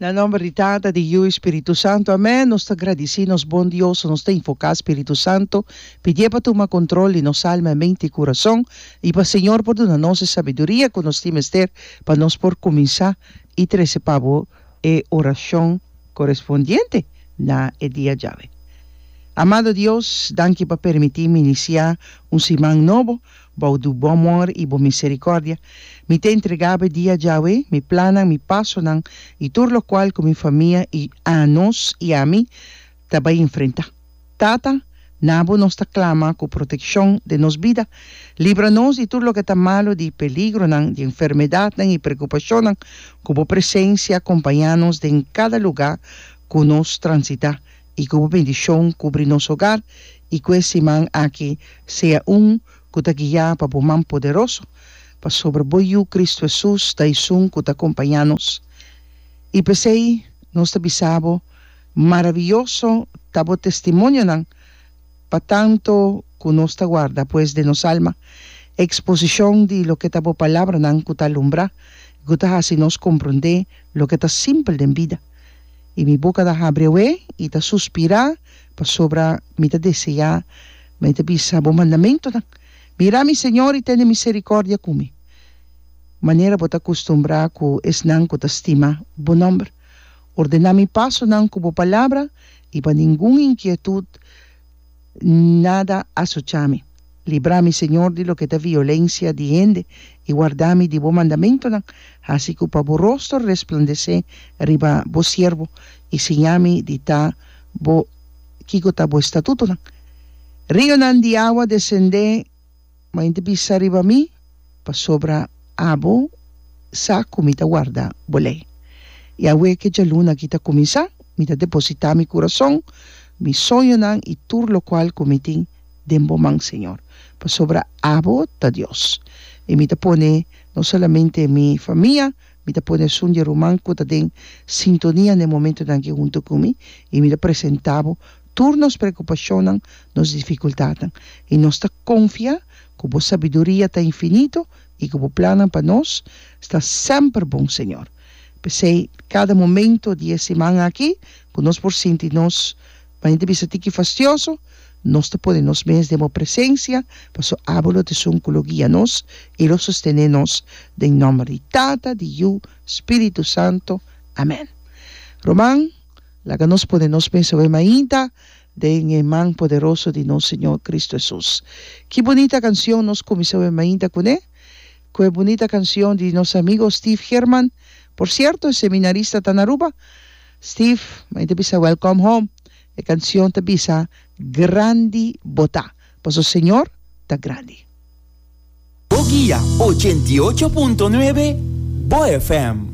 Na nomber di Tata, di Yiu i Spiritu Santu, amén. Nos ta gradisí nos Bon Dios ku nos ta invoká Spiritu Santu, pidié pa tuma kontrol di nos alma, mente i kurason, i pa Señor por duna nos e sabiduria ku nos tin mester pa nos por kuminsá i trese pa Bo e orashon korespondiente na e dia djawe. Amado Dios, danki pa permití mi inisiá un siman nobo. Bou do bo amor i bo misericordia, mi ta entrega bo e dia, Jahwe, mi plannan, mi pasonan i tur lokual ku mi famia i anos i ami ta bai enfrentá. Tata, na bo nos ta klama ku protekshon den nos bida. Libra nos di tur loke ta malu, di peligronan, di enfermedatnan i prekupashonnan. Ku bo presensia kompañá nos den kada lugá ku nos transitá. y cu bo bendicion cubri nos hogar y cu e siman aki sea un cu ta guia pa bo man poderoso, pasobra bo Yu Cristo Hesus ta esun cu ta compaña nos. Y p'esey nos ta bisa bo, Maraviyoso ta bo testimonionan pa tanto cu nos ta guarda pues den nos alma exposicion di loke ta bo palabranan cu ta alumbra y cu ta haci nos comprende loke ta simpel den bida. I mi boka ta habri awe i ta suspirá, pasobra mi ta deseá, mi ta bisa bo mandamentunan. Mira, mi señor, i tene miserikòrdia ku mi, manera bo ta kustumbrá ku esnan ku ta stima bo nòmber. Ordená mi pasonan ku bo palabra, i pa ningun inkietut, Nada a sucha mi. Libra mi, Señor, di loke ta violencia di hende, i warda mi di bo mandamentonan, haci cu pa bo rostro resplandece riba bo siervo, i siña mi di ta bo kico ta bo estatutonan. Rionan di awa descende. Ma inti bisa riba mi, pasobra abo sa ku mi ta warda bo lei. I awe ku e djaluna aki ta kuminsá, mi ta depositá mi kurason, mi soñonan i tur lokual ku mi tin den bo man, señor, pasobra abo ta Dios. I mi ta pone no solamente mi famia, mi ta pone esun di e ruman ku ta den sintonia na e momentunan aki huntu ku mi, i mi ta presentá bo, tur nos preokupashonnan, nos difikultatnan, i nos ta konfiá ku bo sabiduria ta infinito i ku bo plannan pa nos ta semper bon, Señor. P'esei, kada momento di e siman aki ku nos por sinti nos maña ta bisa tiki fastioso, nos ta pone nos mes den bo presensia, paso abo lo tesun ku lo guia nos i lo sostené nos, den nòmber di Tata, di Yu, Spiritu Santo. Amèn. Román. Laga nos pone nos mes awe mainta den e man poderoso di nos Señor Cristo Hesus. Ki bunita cancion nos cuminsa awe mainta cune? Cu e bunita cancion di nos amigo Steve German. Por cierto, e seminarista ta na Aruba. Steve, mainta bisa Welcome Home. E cancion ta bisa, Grandi bo ta, pasobra Señor ta grandi. Bo guia ochenta i ocho punto nuebe, bo FM.